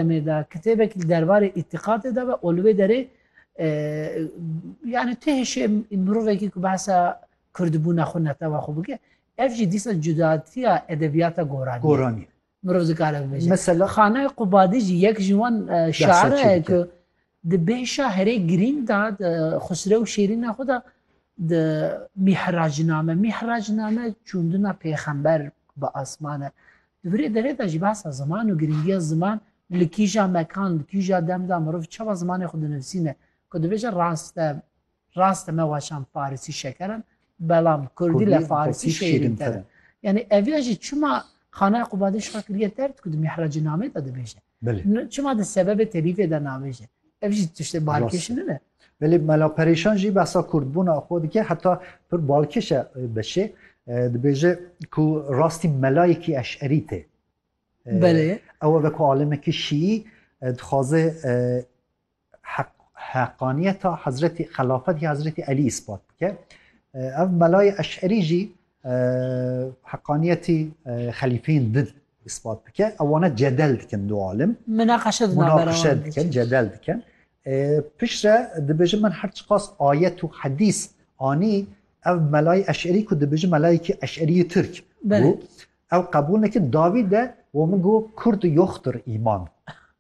demê de kitêbek li derbarê îtîqatê de ve û li wê derê yani tu hêşê mirovekî ku behsa kurdbûna xwe netewa xwe bike ev jî dîsa cudatiya edebiyata goranî goranî mirov dikare bibêje mesela xanayê qubadî jî yek ji wan şaire ku Di bêhşa herê girîng de di Xusrew Şêrîna xwe de di Mîhracname, Mihracname çûndina pêxember bi asman e. Di virê derê de jî behsa ziman û girîngiya ziman li kîja mekan, li kîja dem de mirov çawa zimanê xwe dinivîsîne. Ku dibêje rast e, rast e me waşan farisî şeker in, belam kurdî li farisî şêrînter in. Yanî ev ya jî çima Xanaya Qubadê şa kiriye derd ku di Mîhracnamê de dibêje. Belê. Çima di sebebê telîfê de navêje. Ev jî tiştê balkêş nine. Belê Mela Perêşan jî behsa kurdbûna xwe dike heta pir balkêş e beşê. Dibêje ku rastî melayekî eşerî tê. Belê. Ew e ku alimekî şîî dixwaze heq heqaniyeta Hezretî xelafetê Hezretî Elî îspat bike. Ev melayê eşerî jî heqaniyetî xelîfeyên din îspat bike. Ewane cedel dikin du alim. Minaqeşe dikin. Minaqeşe dikin, cedel dikin. Pişre dibêjin min her çiqas ayet û hedîs anî ev melayê eşerî ku dibêjin melayekî eşerî Tirk bû. Ew qebûl nekin dawî de we min got kurd yoxtir îman.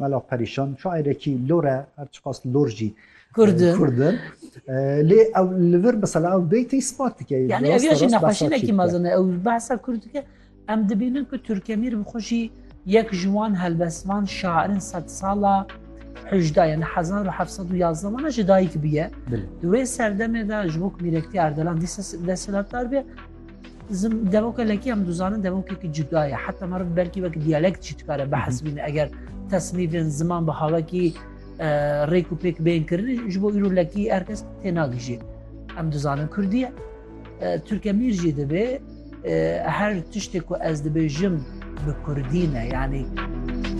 Mela perîşan şaîrekî lor e her çiqas lor jî Kurd in. Lê ew li vir mesela ew beytê ispat dike. Yani ev ya jî nexweşînekî mezin e ew behsa Kurd dike. Em dibînin ku Turkemîr bi xwe jî yek ji wan helbestvan şairin sed sala hejda yani hezar û heft sed û yazdeh wana ji dayik bûye. Di wê serdemê de ji bo ku mîrektiya Erdelan dîsa desthilatdar be Zim devoka lekî em dizanin devokekî cuda ye heta meriv belkî wek diyalekt jî dikare behesbîne eger tesmîvên ziman bi havekî rêk û pêk bên kirin ji bo îro lekî herkes tênagijî em dizanin Kurdî ye Türkemîr jî dibê her tiştê ku ez dibêjim bi Kurdî ne yanî